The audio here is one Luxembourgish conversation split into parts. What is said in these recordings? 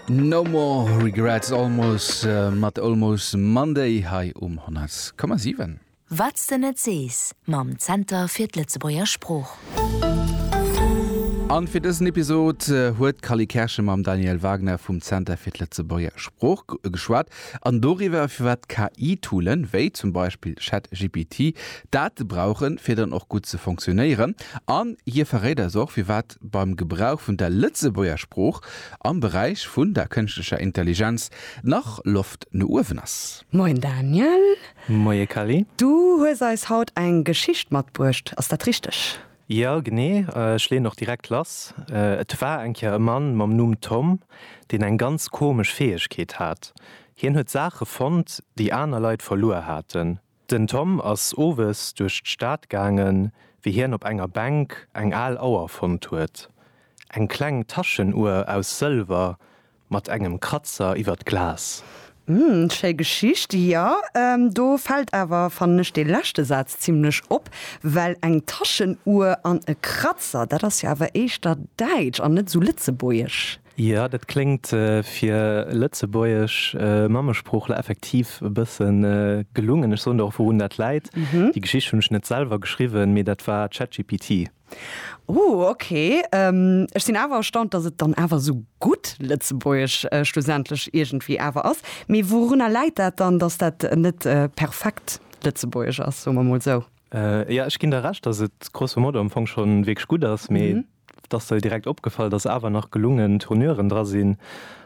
No more regrets almost mat Almost Monday hei um 100,7. Wat s de net sees mam Zenter fir d'Lëtzebuerger Sprooch. An fir dësen Episod huet d'Cally Kerschen mam Daniel Wagner vum Zenter fir d'Lëtzebuerger Sprooch geschwat an doriwwer firwat KI-Toolen, wéi zum Beispill ChatGPT, Date brauchen fir dann och gutt ze fonctionnéieren an hie verréit eis och firwat. Impakt beim Gebrauch vun der Lëtzebuerger Sprooch am Beräich vun der kënschtlecher Intelligenz nach Loft no uewen ass. Moien Daniel. Moie Kelly. Du hues eis haut eng Geschicht matbruecht, ass dat richteg? Jo, genee. Ech leeën och direkt lass. Et war eng Kéier e Mann mam Numm Tom, deen eng ganz komesch Fäegkeet hat. Hien huet Saache fonnt, déi aner Leit verluer haten. Den Tom ass owes duerch d'Stad gaangen, wéi hien op enger Bänk eng al Auer fonnt huet. Eng kleng Taschenuer aus Sëlwer mat engem Kratzer iwwer d'Glas. Hm, schéi Geschicht. Jo, do fält awer, fannen ech, dee leschte Saz zimlech op, well eng Taschenuer an e Kratzer, dat ass jo awer éischter däitsch an net esou lëtzebuergesch. Jo, dat kléngt fir lëtzebuergesch Mammesproochler effektiv e bësse gelungen. Ech soen der och, wourun dat läit. Déi Geschicht hunn ech net selwer geschriwwen, mee dat war ChatGPT. Ooh, ok. Ech sinn awer erstaunt, datt et dann awer esou gutt lëtzebuergesch schlussendlech iergendwéi awer ass. Mee wourunner läit dat dann, datt dat net perfekt lëtzebuergesch ass, soe mer mol esou? Jo, ech ginn der Recht, datt et grosso modo am Fong schonn wierklech gutt ass, mee dass se direkt opgefall, dass awer nach gelungen Tourneuren dra sinn,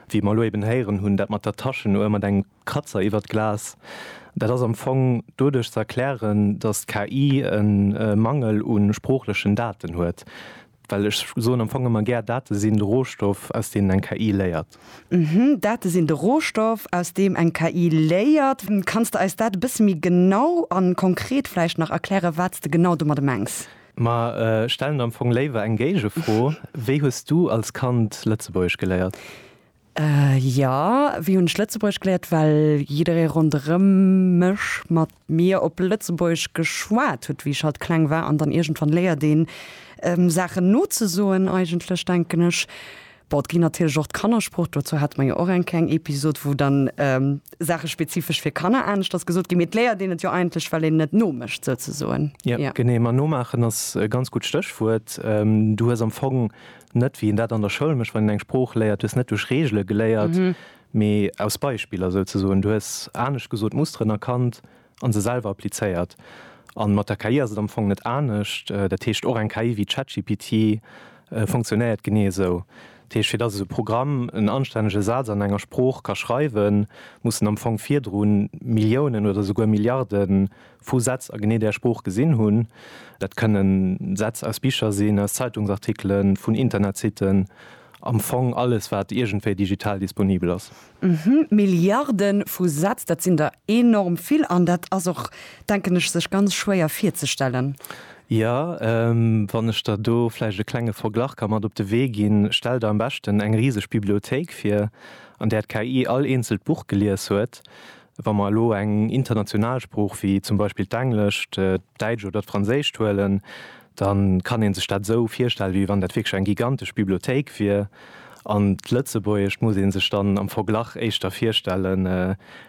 wéi mer elo eben héieren hunn, dat mat der Taschenuhr, mat engem Kratzer iwwert d'Glas. Dat ass am Fong doduerch ze erklären, dass d'KI e Mangel u sproochlechen Daten huet, well ech soen am Fong ëmmer gär, Date sinn de Rohstoff, aus deenen eng KI léiert. Uhmm, Date sinn de Rohstoff, aus deem eng KI léiert. Kanns de eis dat e bësse méi genau a konkret vläicht nach erklären, wat s de genau domadde mengs? Mer stellen der am Fong léiwer eng Géigefro, Wéi hues du als Kand Lëtzebuergesch geléiert? Jo, wéi hunn ech Lëtzebuergesch geléiert? Well jidderee ronderëm mech mat mir op Lëtzebuergesch geschwat huet, wéi ech halt kleng war. An dann iergendwann léiert een Saachen nozesoen eigentlech, denken ech. Bon, et ginn natierlech och d'Kannersport, dozou hate mer jo och eng kleng Episod, wou dann Saache spezifesch fir Kanner aneschters gesot ginn. Mee et léiert een et jo eigentlech, well een net nomécht souzesoen. Jo, genee. Ma nomaachen ass e ganz gutt Stéchwuert. Du hues am Fong net, wéi een dat an der Schoul mécht, wann een eng Sprooch léiert, du hues net duerch Reegele geléiert, mee aus Beispiller souzesoen. Du hues, anescht gesot, Musteren erkannt, a se selwer applizéiert. A mat der KI ass et am Fong net anescht. Dat heescht, och eng KI wéi ChatGPT funktionéiert genee esou. Dat heescht, fir datt esou e Programm en anstännege Saz an enger Sprooch ka schreiwen, muss en am Fong virdru Milliounen oder souguer Milliarde vu Sätz a genee där Sprooch gesinn hunn. Dat kënne Sätz aus Bicher sinn, aus Zeitungsartikelen, vun Internetsitten, am Fong alles, wat iergendwéi digital disponibel ass. Uhmm, Milliarden vu Sätz, dat sinn der enorm vill an dat ass och, denken ech, sech ganz schwéier virzestellen. Jo, wann ech der do vläicht e klenge Verglach ka mat op de Wee ginn, Stell der am beschten eng riseg Bibliothéik vir, an där d'KI all eenzelt Buch gelies huet. Wa mer elo eng international Sprooch wéi zum Beispill d'Englescht, d'Däitsch oder d'Franséischt huelen, da kann ee sech dat esou virstellen, wéi wann dat wierklech eng gigantesch Bibliothéik wier. An d'Lëtzebuergescht muss ee sech dann am Verglach éischter virstellen,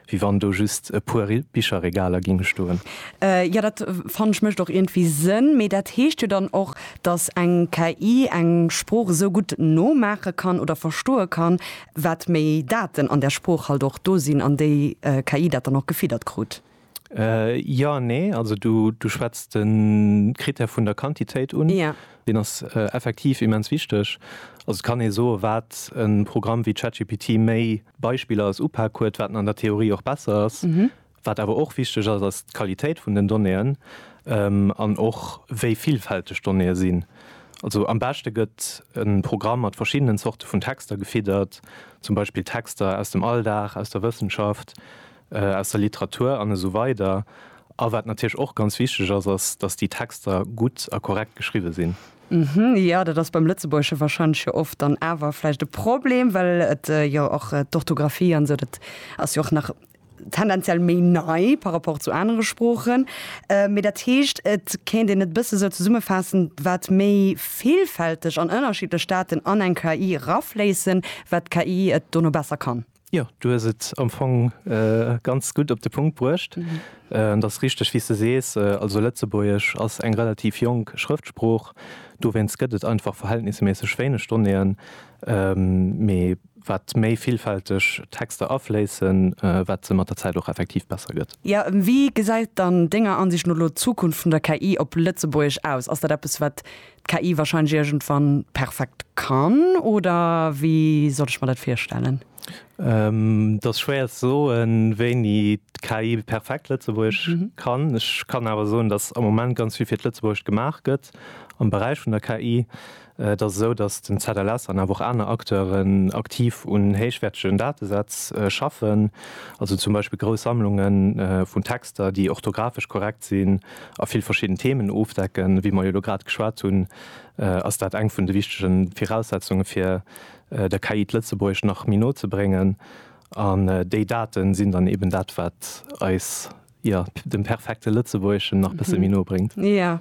wéi wann do just e puer Bicherregaler géinge stoen. Jo, dat fannen ech mécht och iergendwéi Sënn. Mee dat heescht jo dann och, datt eng KI eng Sprooch esou gutt nomaache kann oder verstoe kann, Wat méi Daten an der Sprooch halt och do sinn, an déi KI dat dann och gefiddert krut. Jo an nee. Also du schwätz de Krittär vun der Quantitéit un. Deen ass effektiv immens wichteg. Also et kann ee soen, wat e Programm wéi ChatGPT méi Beispiller als Upak huet, wat en an der Theorie och besser ass. Wat awer och wichteg ass, ass d'Qualitéit vun den Donnéeën an och wéi villfälteg d'Donnéeë sinn. Also am beschte gëtt e Programm mat verschiddenen Zorte vun Texter gefiddert, zum Beispill Texter aus dem Alldag, aus der Wëssenschaft, aus der Literatur an esou weider A wat natierlech och ganz wichteg ass, ass, datt déi Texter gutt a korrekt geschriwwe sinn. Jo, dat ass beim Lëtzebuergesche warscheinlech jo oft dann awer vläicht e Problem, well et jo och d'Orthografie an esou, dat ass jo och nach tendenziell méi nei par rapport zu anere Sproochen. Mee dat heescht, et kéint een et e bësse sou zesummefaassen, wat méi villfälteg an ënnerschiddlech Daten an eng KI erafléissen, wat d'KI et dono besser kann. Jo, du hues et am Fong ganz gutt op de Punkt bruecht. Et ass richteg, wéi s de sees, also Lëtzebuergesch ass eng relativ jonk Schrëftsprooch, dowéinst gëtt et einfach verhältnisméisseg wéineg Donnéeën. Mee Wat méi villfälteg Texter afléissen, wat se mat der Zäit och effektiv besser gëtt. Jo, wéi gesäit dann Denger Ansicht no elo d'Zukunft vun der KI op Lëtzebuergesch aus? Ass dat eppes, wat d'KI warscheinlech iergendwann perfekt kann, oder wéi soll ech mer dat virstellen? Et ass schwéier ze soen, wéini d'KI perfekt Lëtzebuergesch kann. Ech kann awer soen, dass am Moment ganz vill fir d'Lëtzebuergescht gemaach gëtt am Beräich vun der KI. Et ass esou, datt den ZLS an awer och aner Acteuren aktiv un héichwäertegen Datesätz schaffen, also zum Beispill grouss Sammlunge vun Texter, déi orthografesch korrekt sinn a vill verschidden Themen ofdecken. Wéi mer jo elo grad geschwat hunn, ass dat eng vun de wichtege Viraussetzunge fir der KI d'Lëtzebuergesch nach méi no ze bréngen. An déi Date sinn dann eeben dat, wat eis. Jo, dem perfekte Lëtzebuergeschen nach bësse méi no bréngt. Jo,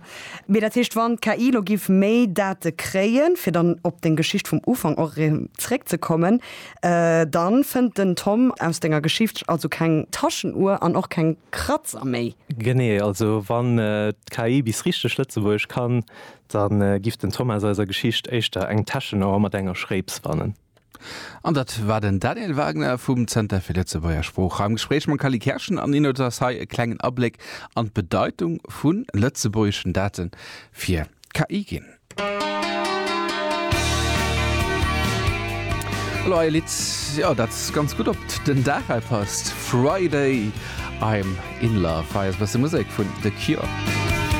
mee dat heescht, wann d'KI elo géif méi Date kréien, fir dann op deng Geschicht vum Ufank och erëm zréckzekommen, da fënnt den Tom aus denger Geschicht also keng Taschenuhr an och keng Kratzer méi. Genee, also wann d'KI bis richteg Lëtzebuergesch kann, da giff den Tom aus eiser Geschicht éischter eng Täschenauer mat enger Schréips fannen. An dat war den Daniel Wagner vum Zenter fir Lëtzebuerger Sprooch am Gespréich mam Kally Kerschen. An Innout ass hei e klengen Abléck an d'Bedeitung vu lëtzebuergeschen Date fir d'KI ginn. Elo hei e Lidd, jo, dat ganz gutt op den Dag hei passt, Friday, I'm in love. Hei ass e bësse Musek vun The Cure.